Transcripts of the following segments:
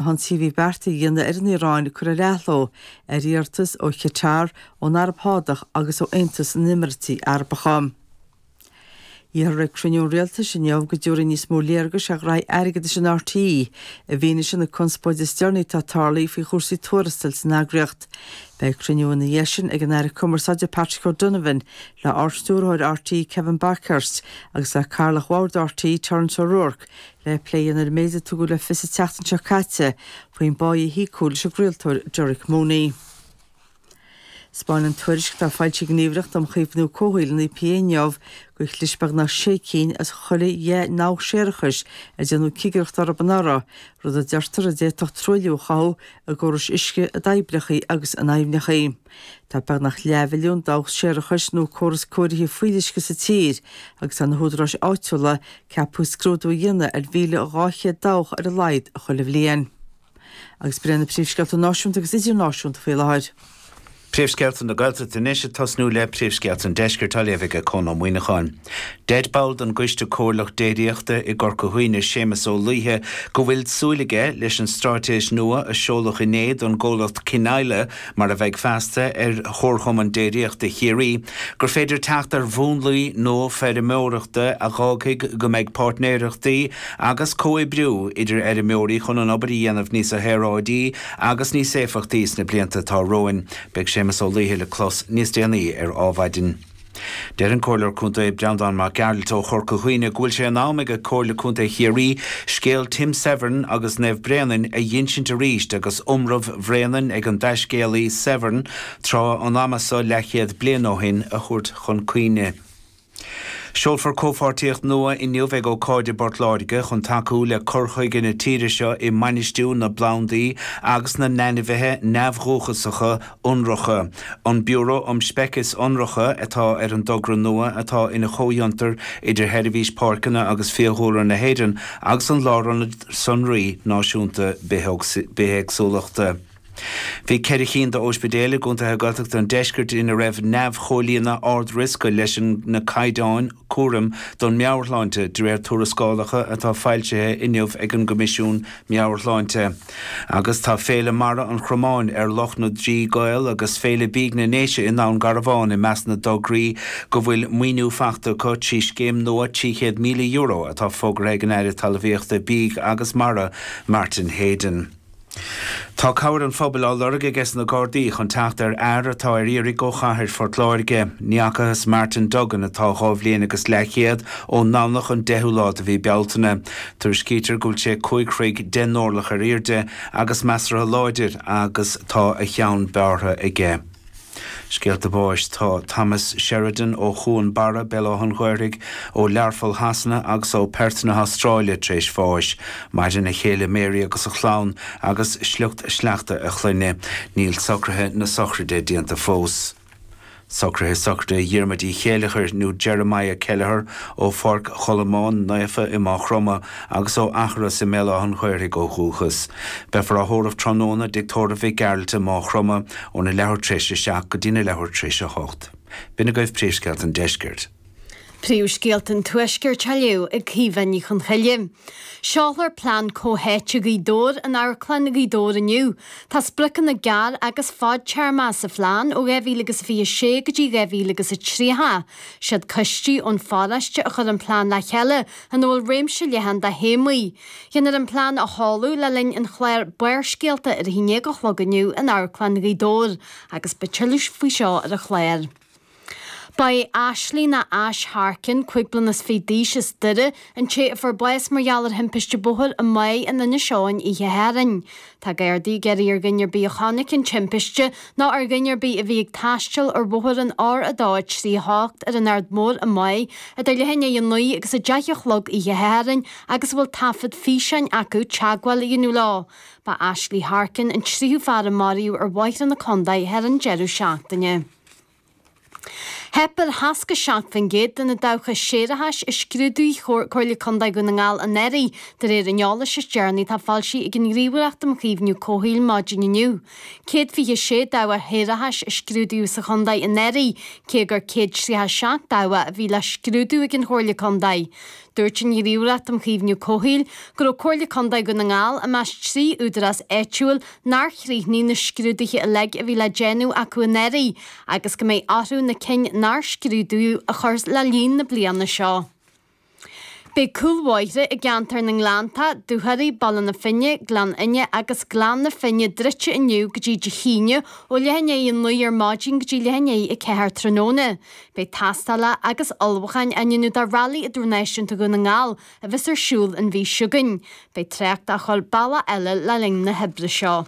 an t-ionsaí a bhí beartaithe a dhéanamh ar an Iaráin curtha ar athló ar iarratas ó Chatar, ón Araib Shádach agus ó Aontas na nÉimirití Arabacha. Iarrfar ag cruinniú an Rialtais inniu go dtabharfaí níos mó léargais ar ghraithí airgeadais in RTÉ i bhfianaise na conspóide is deireanaí atá tarlaithe faoi chúrsaí tuarastail san eagraíocht. Beidh cruinniú ina dhiaidh sin ag an Aire Cumarsáide Patrick O'Donovan le Ardstiúrthóir RTÉ Kevin Bakhurst agus le Cathaoirleach Bhord RTÉ Terence O'Rourke, le plé a dhéanamh ar an méid a tugadh le fios an tseachtain seo caite faoin bpáí a híocadh leis an gcraoltóir Derek Mooney. 'Spáineann tuairisc atá foilsithe ag an nGníomhaireacht um Chaomhnú Comhshaoil an EPA inniu gur chlis beagnach sé cinn as chuile dheich ndabhach séarachais ar déanadh cigireacht orthu anuraidh, rud a deirtear a d'fhéadfadh truailliú a chothú i gcórais uisce, i dtoibreacha agus in aibhneacha. Tá beagnach leathmhilliún dabhach séarachais nó córas cóirithe fuíolluisce sa tír agus tá na húdaráis áitiúla ceaptha scrúdú a dhéanamh ar mhíle dhá chéad dabhach ar a laghad chuile bhliain. Agus b'eod na príomhscéalta náisiúnta agus idirnáisiúnta faoi láthair. Príomhscéalta na Gaeltachta anois ag tosnú le príomhscéalta an Deiscirt á léamh aige Conn Ó Muíneacháin. Deir ball den gCoiste Comhairleach Déiríochta i gCorca Dhuibhne Séamus Ó Laoithe go bhfuil súil aige leis an straitéis nua a seoladh inné don gcomhlacht Kinisla, mar a bheidh feasta ar Chomharchumann Déiríochta Chiarraí, gur féidir teacht ar mhúnlaí nua feirmeoireachta a dh'fhágfaidh go mbeidh páirtnéireachtaí agus comhoibriú idir fheirmeoirí chun an obair a dhéanamh níos saoráidí agus níos éifeachtaí sna blianta atá romhainn. Beidh Séamus Ó Laoithe le clos níos déanaí ar Adhmhaidin. Deir an Comhairleoir Contae Breandán Mac Gearailt ó Chorca Dhuibhne go bhfuil sé in am ag Comhairle Contae Chiarraí scéal Tim Severin agus Naomh Bréanainn a dh'ínsint arís agus iomramh Bhréanainn ag an dtaiscéalaí Severin tráth an ama so leathchéad bliain ó shin a thabhairt chun cuimhne. Seolfar comhpháirtíocht nua inniu ag ócáid i bPort Láirge chun tacú le cur chuige na tíre seo i mbainistiú na bplandaí agus na n-ainmhithe neamhdhúchasacha Ionracha. An Biúró um Speicis Ionracha atá ar an dtogra nua atá ina chomhfhiontar idir Sheirbhís Páirceanna agus Fiadhúlra na hÉireann agus an Lárionad Sonraí Náisiúnta Bithéagsúlachta. Bhí ceithre chinn d'óispidéil i gcontaetha Gaeltachta an deiscirt ina raibh neamh-chomhlíonadh ard-riosca leis na caighdeáin cúraim don meabhairshláinte, de réir tuarascálacha atá foilsithe inniu ag an gCoimisiún Meabhair-Shláinte. Agus tá Féile Mara an Chromáin ar Loch na dTrí gCaol agus Féile Bídh na nDéise i nDún Garbhán i measc na dtograí go bhfuil maoiniú fachta acu trí scéim nua €300,000 atá fógartha ag an Aire Talmhaíochta, Bídh agus Mara, Martin Heydon. Tá cabhair an phobail á lorg aige sna Gardaí chun teacht ar fhear atá ar iarraidh ó chathair Phort Láirge. Ní fhacathas Martin Duggan, atá dhá bhliain agus leathchéad ón nDomhnach an 10ú lá de mhí Bealtaine. Tuairiscítear go bhfuil sé cúig throigh deich n-orlach ar airde agus measartha láidir agus tá a cheann bearrtha aige. Scéalta báis Tá Thomas Sheridan ó Chuan Barra, Béal Átha an Ghaorthaidh, ó Learpholl Shasana agus ó Perth na hAstráile tar éis bháis. Maireann a chéile Mary agus a chlann agus sliocht sleachta a chlainne. Níl socruithe na sochraide déanta fós. Socruithe sochraide Dhiarmuid Uí Chéilleachair nó Jeremiah Kelleher ó Pháirc Cholmáin Naofa i Maigh Chromtha agus ó Eachros i mBéal Átha'n Ghaorthaidh ó dhúchas. Beifear á thórramh tráthnóna i dTigh Tórraimh Mhic Gearailt i Maigh Chromtha óna leathuair tar éis a seacht go dtína leathuair tar éis a hocht. B'in agaibh Príomhscéalta an Deiscirt. Príomhscéalta an Tuaiscirt á léamh ag Caoimhe Ní Chonchoille. Seolfar plean comhtháite Ghaoth Dobhair in Amharclann Ghaoth Dobhair inniu. Tá spriocanna gearr agus fadtéarma sa phlean ó 2026 go dtí 2030. Siad coistí ón pharóiste a chuir an plean le chéile ina bhfuil réimse leathan de théamaí. Dhéanfar an plean a sheoladh le linn an chláir Barrscéalta ar 11 a chlog inniu in Amharclann Ghaoth Dobhair agus beidh tuilleadh faoi seo ar an chlár. Ba é Ashley ná Ash Harkin, cúig bliana is fiche d'aois as Doire, an té a fuair bás mar gheall ar thimpiste bóthair i Maigh in Inis Eoghain oíche Shathairn. Tá Gardaí ag iarraidh ar dhuine ar bith a chonaic an timpiste nó ar dhuine ar bith a bhí ag taisteal ar bhóthar an R238 ar an Aird Mhór i Maigh idir leath i ndiaidh a naoi agus a deich a chlog oíche Shathairn agus a bhfuil taifead físeáin acu teagmháil a dhéanamh leo. Ba Ashley Harkin an tríú fear a maraíodh ar bhóithre na contae thar an deireadh seachtaine. Theip ar 67% de na dabhcha séarachais a scrúdaigh Comhairle Contae Dhún na nGall anuraidh, de réir an eolais is deireanaí atá foilsithe ag an nGníomhaireacht um Chaomhnú Comhshaoil maidin inniu. Céad fiche sé dabhach shéarachais a scrúdaíodh sa chontae anuraidh, cé gur céad tríocha seacht dabhach a bhí le scrúdú ag an Chomhairle Contae. Dúirt an Ghníomhaireacht um Chaomhnú Comhshaoil go raibh Comhairle Contae Dhún na nGall i measc trí údarás áitiúil nár chríochnaigh na scrúduithe uilig a bhí le déanamh acu anuraidh agus go mbeidh orthu na cinn nár scrúdaíodh a chur le líon na bliana seo. Beidh cúlbhóithre i gceantar na nGleannta, Dúchoraidh, Baile na Finne, Gleann Fhinne agus Gleann na Finne druidte inniu go dtí Dé hAoine ó leath i ndiaidh a naoi ar maidin go dtí leath i ndiaidh a ceathair tráthnóna. Beidh tástáil agus ullmhúcháin á ndéanamh do Rally Idirnáisiúnta Dhún na nGall a bheas ar siúl an mhí seo chugainn. Beidh trácht á chur bealach eile le linn na hoibre seo.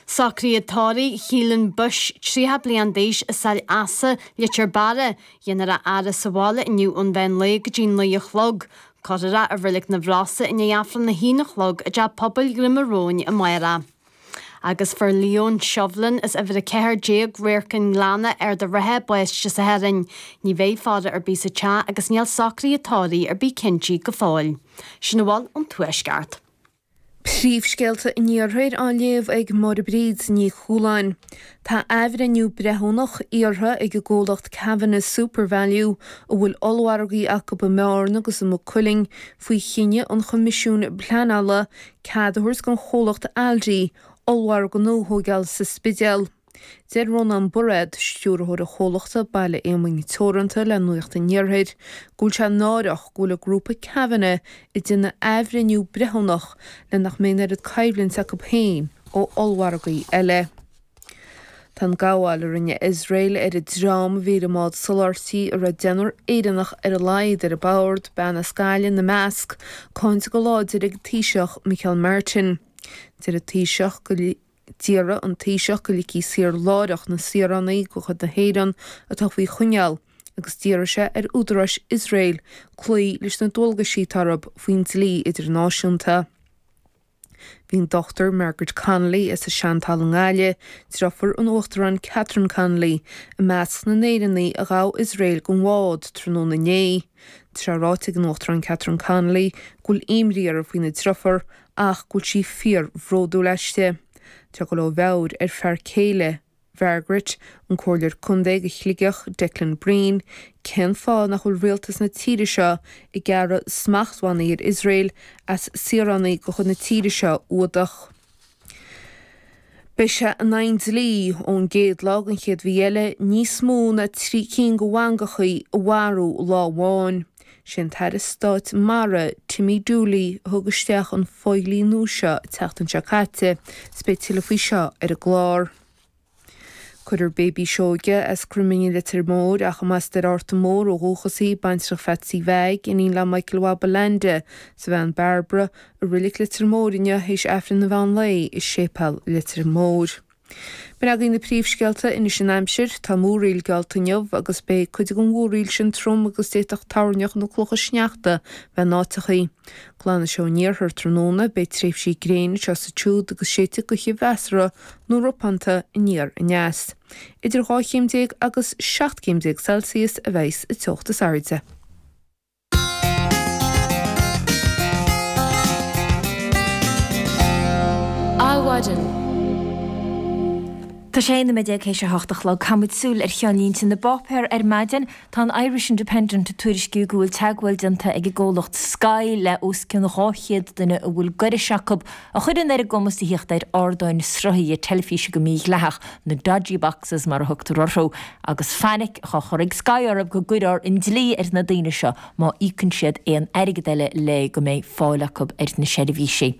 Socruithe tórraimh Chiallain Bush, 30 bliain d'aois, i Saill Easa, Leitir Beara. Dhéanfar é a fhaire sa bhaile inniu ón mheán lae go dtí naoi a chlog. Cuirfear é i reilig na bhFrasa i ndiaidh Aifreann a haon a chlog i dTeach Pobail Dhroim a Róin amárach. Agus fuair Leon Shovlin as uimhir 14 Radharc an Ghleanna, Ard an Rátha, bás Dé Sathairn. Ní bheidh faire ar bith sa teach agus níl socruithe tórraimh ar bith cinntithe go fóill. Sin a bhfuil ón Tuaisceart. Príomhscéalta an Iarthair á léamh ag Máire Bríd Ní Chualáin. Tá athbhreithniú breithiúnach iarrtha ag an gcomhlacht Kavanagh Supervalu, a bhfuil ollmhargaí acu i mBeárna agus i Maigh Cuilinn, faoi chinneadh an Choimisiúin Pleanála Cead a thabhairt don chomhlacht Aldi ollmhargadh nua a thóigeáil sa Spidéal. Deir Rónán Bairéad, stiúrthóir an chomhlachta Baile Éamoinn Teoranta le Nuacht an Iarthair go bhfuil sé náireach go bhfuil an Grúpa Kavanagh ag déanamh athbhreithniú breithiúnach le nach mbeidh an oiread coimhlint acu féin ó ollmhargaí eile. Tá an gabháil a rinne Iosrael ar an dream a bhí ar an mbád soláthairtí, a raibh deichniúr Éireannach ar a laghad ar bord, bean as Gaillimh ina measc, cáinte go láidir ag an Taoiseach, Micheál Martin. Deir an Taoiseach go, d'iarr an Taoiseach go ligfí saor láithreach na saoránaigh de chuid na hÉireann atá faoi choinneáil agus d'iarr sé ar údaráis Iosrael cloí leis na dualgaisí atá orthu faoin dlí idirnáisiúnta. Bhí an Dr Margaret Connolly as an Seantalamh i nGaillimh, driofúr an Uachtaráin Catherine Connolly, i measc na nÉireannaigh a ghabh Iosrael den bhád tráthnóna inné. Tá sé ráite ag an Uachtarán Catherine Connolly go bhfuil imní uirthi faoina driofúr ach go bhfuil sí fíorbhródúil aisti. Tá go leor mearbhall ar fear céile Mhargaret, an comhairleoir contae do Shligeach, Declan Bree, cén fáth nach bhfuil rialtas na tíre seo ag gearradh smachtbhannaí ar Iosrael as saoránaigh de chuid na tíre seo a fhuadach? Beidh sé in aghaidh an dlí, ón gcéad lá den chéad mhí eile, níos mó ná trí cinn de mhangachaí a mharú lá amháin. Sé an tAire Stáit Mara, Timmy Dooley, a thug isteach an fodhlí nua seo an tseachtain seo caite, is beidh tuilleadh faoi seo ar an gclár. Cuirfear Baby Seoige as Cruiminn i Leitir Móir, ach a mba as Doire Fhatharta Mór ó dhúchas í, baintreach Pheatsaí Mheaig, iníon le Michael Mhaith Bulande, is a bhean Barbara, i Reilig Leitir Móir inniu théis Aifreann an Mheán Lae i Séipéal Leitir Móir. Sin agaibh na príomhscéalta anois an aimsir. Tá múraíl geallta inniu agus beidh cuid den mhúraíl sin trom agus d'fhéadfadh toirneach nó clocha sneachta bheith in áiteachaí. Glanfaidh sé ón iarthar tráthnóna, beidh tréimhsí gréine anseo is ansiúd agus séidfidh gaoth mheasartha nó ropánta aniar aneas. Idir 12 chéim agus 17 céim Celsius a bheidh sa teocht is airde. Adhmhaidin. Tá sé 19 nóiméad théis a hocht a chlog. Caithfidh muid súil ar cheannlínte na bpáipéar ar maidin. Tá an Irish Independent ag tuairisciú go bhfuil teagmháil déanta ag an gcomhlacht Sky le os cionn 200 duine a bhfuil gaireas acu a chuireann ar a gcumas tíocht ar ardáin sruthaithe teilifíse go mí-dhleathach, na 'dodgy boxes' mar a thugtar orthu, agus fainic á chur ag Sky orthu go gcuirfear an dlí ar na daoine seo má íocann siad aon airgead eile le go mbeidh fáil acu ar na seirbhísí.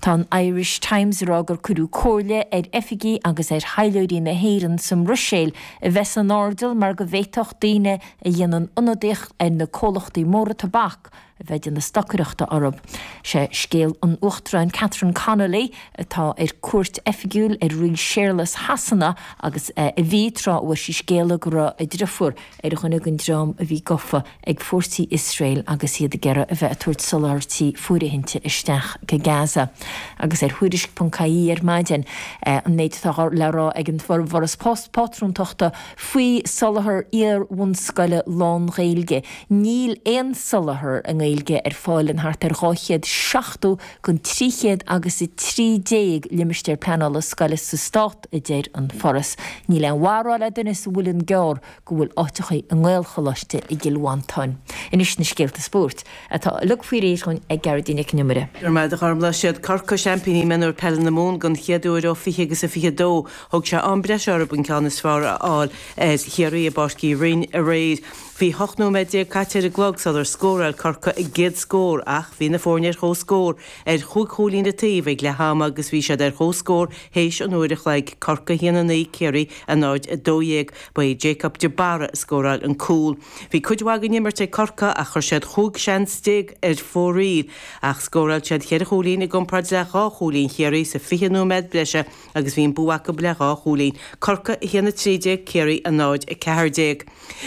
Tá an Irish Times ag rá gur cuireadh comhairle ar oifigigh agus ar thaidhleoirí na hÉireann sa mBruiséil a bheith san airdeall mar go bhféadfadh daoine a dhéanann ionadaíocht ar na comhlachtaí móra tobac a bheith ag déanamh stocaireachta orthu. Sé scéal an Uachtaráin Catherine Connolly, atá ar cuairt oifigiúil ar Rí Séarlas Shasana agus a bhí, tráth a bhfuair sí scéala go raibh a driofúr ar dhuine den dream a bhí gofa ag fórsaí Iosrael agus iad ag iarraidh a bheith ag tabhairt soláthairtí fóirithinte isteach go Gaza. Agus ar Thuairisc.ie ar maidin, an méid atá le rá ag an bhForas Pátrúntachta faoi soláthar iar-bhunscoile lán-Ghaeilge. Níl aon soláthar i nGaeilge ar fáil in thart ar 270 den 300 agus 13 Limistéar Pleanála Scoile sa Stát, a deir an Foras. Níl aon mhaith a rá le duine sa Muileann gCearr go bhfuil áiteachaí i nGaelcholáiste i gCill Mhantáin. Anois na scéalta spóirt, atá uilig faoi réir ag Gearóidín Nic an Iomaire. Go raibh maith agat, a Ghormfhlaith. Siad Corcaigh seaimpíní mionúir peile na Mumhan den chéad uair ó 20 agus a 22. Thóg sé am breise orthu an ceann is fearr a fháil ar Chiarraí i bPáirc Uí Rinn aréir. Bhí 18 nóiméad caite ar an gclog sular scóráil Corcaigh a gcéad scór ach bhí na foirne ar chomhscór ar chúig chúilín an taobh ag leath ama agus bhí siad ar chomhscór théis an uair a chloig, Corcaigh 1 9, Ciarraí 0 12. Ba é Jacob de Barra a scóráil an cúl. Bhí cuid mhaith den imirt ag Corcaigh ach chuir siad 15 seans ar fóraoil ach scóráil siad cheithre chúilín i gcomparáid le dhá chúilín Chiarraí sa 20 nóiméad breise agus bhí an bua acu le dhá chúilín, Corcaigh 1 13, Ciarraí 0 14.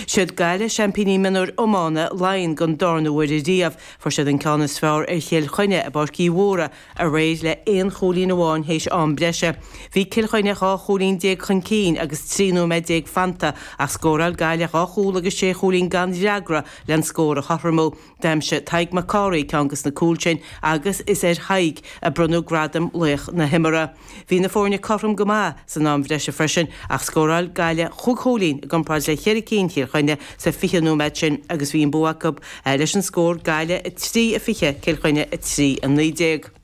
Siad Gaillimh seaimpíní mionúir iomána Laighean den darna huair riamh, fuair siad an ceann is fearr ar Chill Chainnigh i bPáirc Uí Mhórdha aréir le aon chúilín amháin théis am breise. Bhí Cill Chainnigh 12 chúilín chun cinn agus 13 nóiméad fanta ach scóráil Gaillimh dhá chúl agus sé chúilín gan fhreagra len scór a chothromú. D'aimsigh Tadhg Mac Cárthaigh ceann des na cúil sin agus is ar Thadhg a bronnadh gradam laoch na himeartha. Bhí na foirne cothrom go maith san am bhreise freisin ach scóráil Gaillimh chúig chúilín i gcomparáid le cheithre cinn Chill Chainnigh sa 20 nóiméad sin agus bhí an bua acu leis an scór Gaillimh 3 20 Cill Chainnigh 3 19.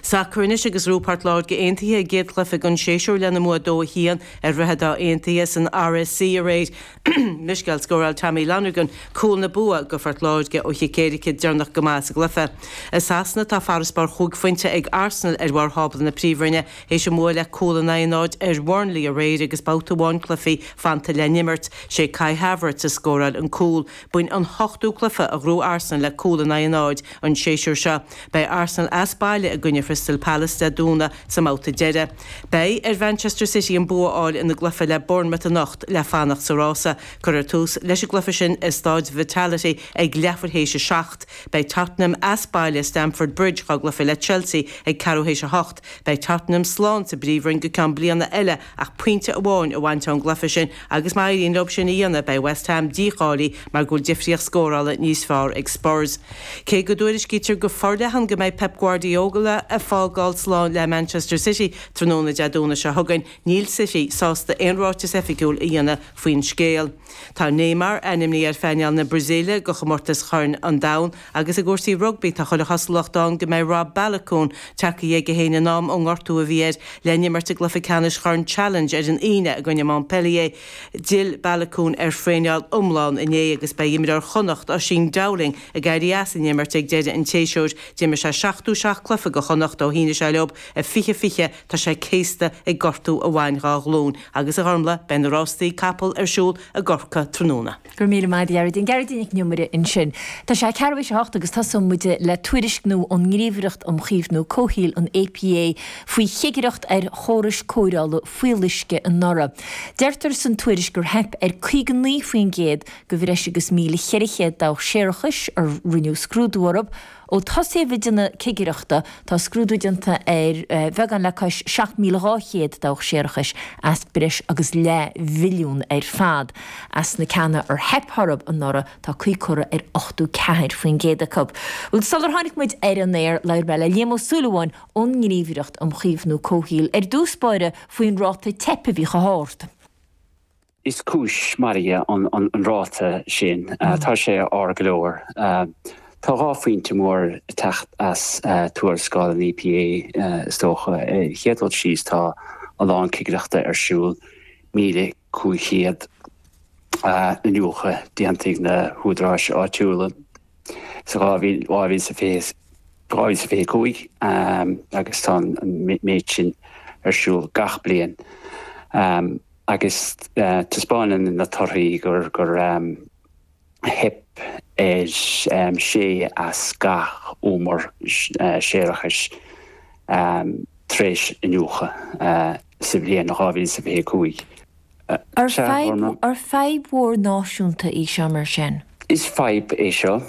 Sacar anois agus ghnóthaigh Port Láirge Aontaithe a gcéad chluiche den séasúr lena mbua 2 1 ar Dhroichead Átha Aontaithe san RSC aréir. Miscell, Scóráil Tommy Lonergan cúl na bua go Phort Láirge ó chic éirice deireanach go maith sa gcluiche. I Sasana tá farasbarr chúig phointe ag Arsenal ar bharr thábla na Príomhroinne théis a mbua le cúl in aghaidh a náid ar Bhurnley aréir agus babhta amháin cluichí fanta le n-imirt. Sé Kai Havertz a scóráil an cúl. B'in an hochtú cluiche a ghnóthaigh Arsenal le cúl in aghaidh a náid an séasúr seo. Beidh Arsenal as baile i gcoinne Chrystal Palace Dé Domhnaigh sa mbabhta deiridh. Beidh ar Mhanchester City an bua a fháil ina gcluiche le Bournemouth anocht le fanacht sa rása. Cuirfear tús leis an gcluiche sin i Staid Vitality ag leathuair théis a seacht. Beidh Tottenham as baile i Stamford Bridge dhá gcluiche le Chelsea ag ceathrú théis a hocht. Beidh Tottenham slán sa bpríomhroinn go ceann bliana eile ach pointe amháin a bhaint ón gcluiche sin Agus má éiríonn leo sin a dhéanamh, beidh West Ham dícháilithe mar go bhfuil difríocht scórála níos fearr ag Spurs. Cé go dtuairiscítear go forleathan go mbeidh Pep Guardiola ag fágáil slán le Manchester City tráthnóna Dé Domhnaigh seo chugainn, níl City sásta aon ráiteas oifigiúil a dhéanamh faoin scéal. Tá Neymar ainmnithe ar phainéal na Brasaíle do chomórtas Chorn an Domhain, Agus i gcúrsaí rugbaí, tá chuile chosúlacht ann go mbeidh Rob Baloucoune tagtha chuige héin in am ón ngortú a bhí air le n-imirt i gcluiche ceannais Chorn Challenge ar an Aoine i gcoinne Montpellier. D'fhill Baloucoune ar thraeneáil iomlán inné agus beidh imreoir Chonnacht, Oisín Dowling, ag éirí as an imirt ag deireadh an tséasúir. D'imir sé 77 cluiche do Chonnacht ó shínigh sé leo i 2020. Tá sé céasta ag gortú a bhain dhá ghlúin. Agus a Ghormfhlaith, beidh na rástaí capall ar siúl i gCorcaigh tráthnóna. Go raibh míle maith agat, a Ghearóidín. Gearóidín Nic an Iomaire ansin. Tá sé ceathrú éis a hocht agus tosóidh muid le tuairisc nua ón nGníomhaireacht um Chaomhnú Comhshaoil, an EPA, faoi chigireacht ar chórais cóireála fuíolluisce anuraidh. Deirtear san tuairisc gur theip ar 59% de bhreis agus 1,400 dabhach séarachais a rinneadh scrúdú orthu, Ó tosaíodh ag déanamh cigireachta, tá scrúdú déanta ar bheagán le cois 7,200 dabhach séarachais as breis agus leath mhilliún ar fad. As na ceanna ar theip orthu anuraidh, tá caoi curtha ar ochtú ceathair faoin gcéad acu. Bhuel, sular tháinig muid ar an aer, labhair mé le Liam Ó Súilleabháin ón nGníomhaireacht um Chaomhnú Comhshaoil ar dtús báire faoin ráta teip a bheith chomh hard. Is cúis mairge an ráta sin. Tá sé ard go leor. Tá dhá phointe mór ag teacht as tuarascáil an EPA, is dócha. Ar an chéad dul síos, tá a lán cigireachta ar siúl, 1,500 iniúchadh déanta ag na húdaráis áitiúla sa 2025 agus tá an méid sin ar siúl gach bliain. Agus taispeáineann na torthaí gur theip ar sé as gach umar séarachais tar éis iniúchadh sa bhliain 2025. Ar fadhb mhór náisiúnta é seo mar sin? Is fadhb é seo.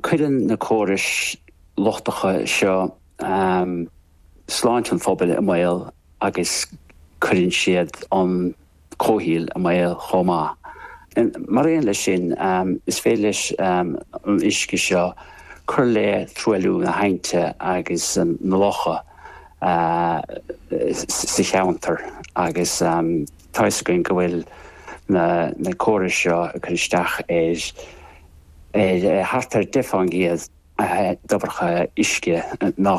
Cuireann na córais lochtacha seo sláinte an phobail i mbaol. agus cuireann siad an comhshaol i mbaol chomh maith. Mar aon leis sin, is féidir leis an uisce seo cur le truailliú na haibhnte agus na locha sa cheantar agus tá fhios againn go bhfuil na córais seo ag cur isteach ar thart ar 10% de dhobharlaigh uisce na.